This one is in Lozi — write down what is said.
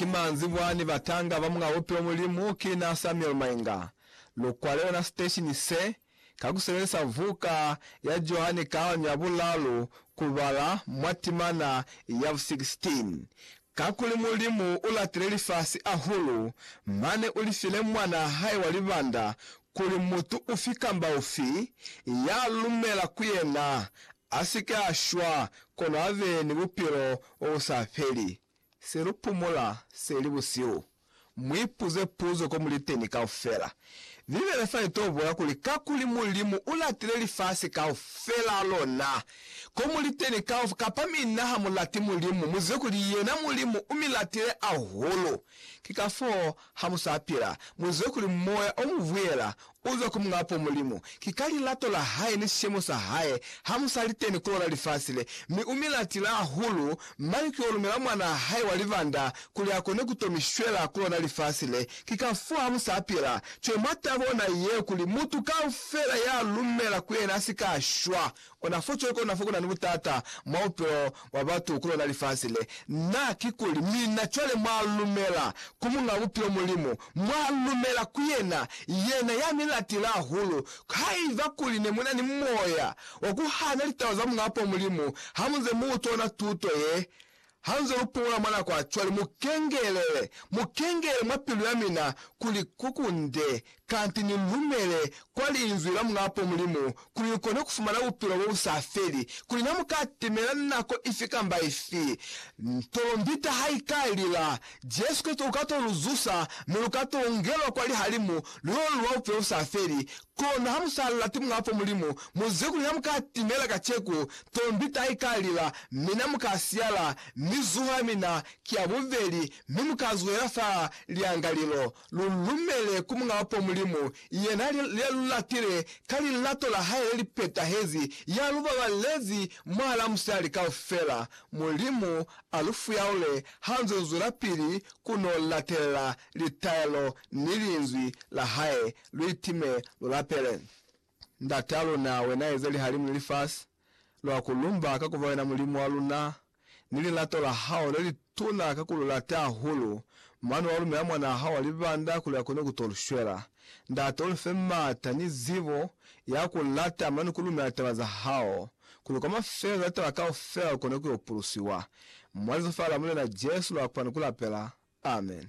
Ki manzibwa ni batanga ba muñ'a bupilo Mulimu ki na Samuel Mainga. Lu kwale ona siteshini se, ka ku sebelisa vuka ya Johanne Kalanyo ya Bulalu, ku bala mwa timana ya bu 16, Kakuli Mulimu u latile lifasi ahulu, mane u li file Mwan'a hae wa libanda, kuli mutu ufi kamba ufi ya lumela ku yena a si ke a shwa, kono a be ni bupilo bo bu sa feli. Se lu pumula se li busihu, mu ipuze puzo ko mu li teni kaufela. Bibele fa i t'o bola kuli kakuli Mulimu u latile lifasi kaufelaa lona, ko mu li teni kauf, kapa mi na ha mu lati Mulimu, mu zibe kuli yena Mulimu u mi latile ahulu. Ki ka foo ha mu sa pila, mu zibe kuli Moya o mu vuyela U zwa ku Muñ'apo Mulimu. Ki ka lilato la Hae ni sishemo sa Hae ha mu sa li teni ku lona lifasi le, mi U mi latile hahulu, mane ki yo lumela Mwanaa Hae wa libanda kuli a kone ku to mi shwela ku lona lifasi le. Ki kafoo ha mu sa pila cwale mwa tabo ona ye, kuli mutu kaufela ya lumela ku Yena a si ka shwa, Ona fo cwale kona fo kuna ni butata mwa bupilo bwa batu ku lona lifasi le. Na, kikuli, mina cwale mwa lumela ku Muñ'a Bupilo Mulimu, mwa lumela ku Yena, Yena ya mi latile hahulu. Haiba kuli ne muna ni moya wa ku hana litaba za Muñ'a Apo Mulimu, ha munze mu utwa ona tuto ye, Hanze lupola mwa nako ya cwale, mukengelele, mukengelele mwa pilu ya mina kuli ku kunde, kanti ni lumele kwa Linzwi la Muñapo Mulimu, kuli ni kone kufumana bupilo bo bu sa feli, kuli na mu ka timela nako ifi kamba ifi ntolombita ha i ka lila. Jesu Kristo uka to lu zusa, mi lu ka to ungelwa kwa lihalimu, lu yo luba bupilo bu sa feli, Kono ha mu sa lati Muñ'a fo Mulimu, mu zwe kuli ha mu ka timela kaceku, tombi ta i ka lila, mina mu ka siyala, mi zuho ya mina ki ya bubeli, mi mu ka zwela fa liangalilo. Lu lumele ku Muñ'a fo Mulimu, yena ya lu latile ka lilato la hae le li petahezi, ya lu babalezi mwahal'a musali kaufela. Mulimu a lu fuyaule ha nz'o zwelapili ku n'o latelela litaelo ni Linzwi la hae Lu itime, lu lapele. Ndat'a luna, Wena eze lihalimu ni lifasi. Lwa ku lumba ka ku ba Wena Mulimu wa luna, ni lilato la Hao le li tuna ka ku lu lata hahulu, mane wa lumela Mwan'a Hao wa libanda kuli a kone ku t'o lu shwela. Ndate, u lu fe m'ata ni zibo ya ku lata mane ku lumela taba za Hao, kuli kwa mafelelo a taba kaufela lu kone ku yo pulusiwa. Mwa Lizofa la Mulena Jesu lwa kupa ni ku lapela. Amen.